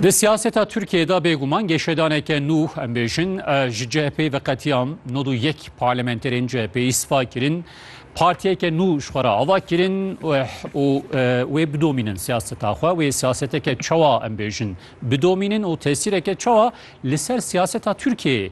Di siyaseta Tirkiyeyê de bêguman geşedaneke nû em bêjin ji CHP'ê ve qetiyam nod û yek parlamenterên CHP'ê îstifa kirin. Partiyeke nû ji xwe re ava kirin û wê bidomînin siyaseta xwe. Wê siyaseteke çawa em bêjin bidomînin û tesîreke çawa li ser siyaseta Tirkiyeyê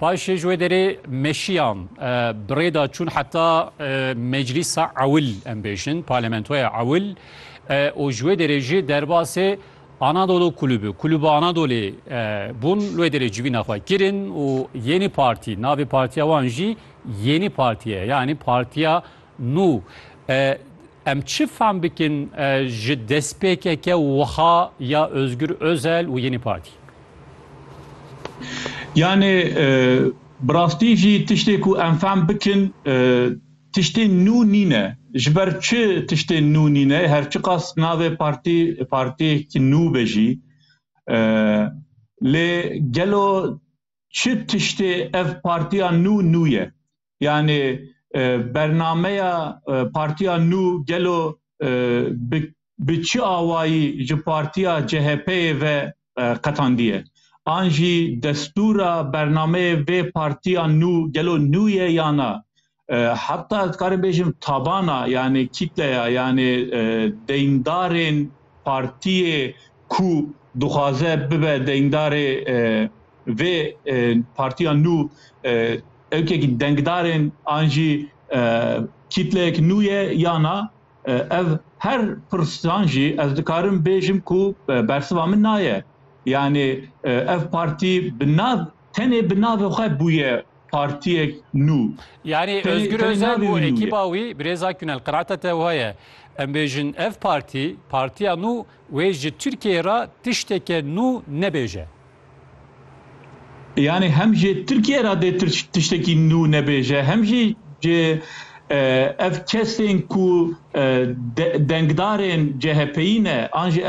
Paşê ji wê derê meşiyan bi rê da çûn heta Meclîsa Ewil em bêjin, Parlamentoya Ewil û ji wê derê jî derbasê Anadolu Kulübü, Kulübü Anadolê bûn li wê derê civîna xwe kirin û Yeni Parti, navê partiya wan jî Yeni Partiye yanî Partiya Nû, em çi fam bikin ji destpêkeke wiha ya Ozgur Ozel û Yenî Partî? Yanê bi rastî jî tiştê ku em fam bikin tiştên nû nîne. Ji ber çi tiştên nû nîne? Her çiqas navê partî partiyekî nû be jî lê gelo çi tiştê ev partiya nû nû ye? Yanî bernameya Partiya Nû gelo bi bi çi awayî ji Partiya CHP'ê ve qetandiye? An jî destûra bernameyê vê Partiya Nû gelo nû ye ya na? Heta dikarim bêjim tabana yanî kîtleya yanî deyindarên partiyê ku dixwaze bibe deyindarê vê Partiya Nû Ewkek denkdarên an jî kîtleyek nû ye ya na? Ev her pirsan jî ez dikarim bêjim ku bersiva min na ye. Yanî ev partî bi nav tenê bi navê xwe bûye partiyek nû. Yanî Ozgur Ozel û ekîba wî Birêz Akgün el qenaeta te wiha ye. Em bêjin ev partî, partiya nû wê ji Tirkiyeyê re tişteke nû nebêje. Yanî hem ji Tirkiyê re dê tiştekî nû nebêje hem jî ji ev kesên ku dengdarên CHPyî ne an jî